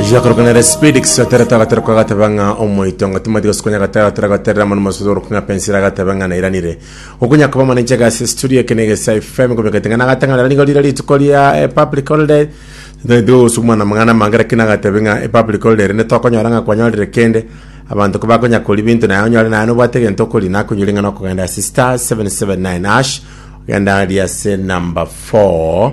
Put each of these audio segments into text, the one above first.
Ochicha korokana ere speed kisatera tagatera kwa gateba ng'a omoito ng'a timati gosukonya gatera tera gaterera manu masudo orokwa ng'a pensira agateba ng'a nairanire okonya koba mane nche gasi studio kene gesa FM komekete ng'a nagatang'ana nigo rire rituko ria eh, public holiday ndio gosukuma na mang'ana mange lakini agatebe ng'a eh, public holiday rende tokonyora ng'a kwanyorire kende abanto kobakonya kori binto naye onyore naye nobwate egento okori nakonyori ng'a nokogenda ase star 779 ash ogenda ria ase number 4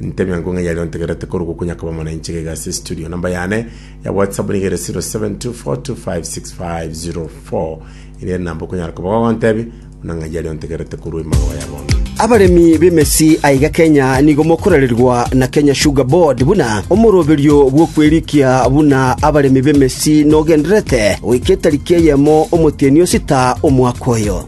Nte emiango ng'a eyari ontegerete korokwo konya koba mono inche gaiga ase estudio. Namba yane ya WhatsApp nigo ere 0724256504. Eria enamba okonyara koba gogontebia buna ng'a eyari ontegerete korwa emagoba ya bono. Abaremi b'emesi aiga Kenya nigo mokorererwa na Kenya Sugar Board buna omoroberio bw'okwerikia buna abaremi b'emesi nogendererete goika etariki eyemo omotienyi osita omwaka oyo.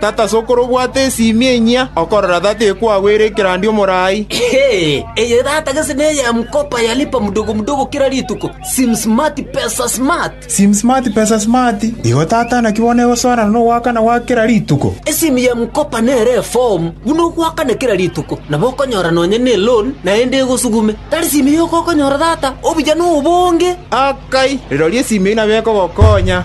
Tata sokoro obwate esimi enyia, okorora tata ekwagwere ekerandia omorai. Eye tata gese neye mkopa ya lipa mdogo mdogo kera rituko, sim smart pesa smart. Sim smart pesa smart, igo tata naki bono egosoana nogoakana gwa kera rituko. Esimi ya mkopa nere efomu buna ogoakana kera rituko, nabo okonyora nonya ne loan naende egosugume. Tari simi yoka okonyora tata, obuya nobonge. Akai, rirorio esimi eyio nabo ekogokonya.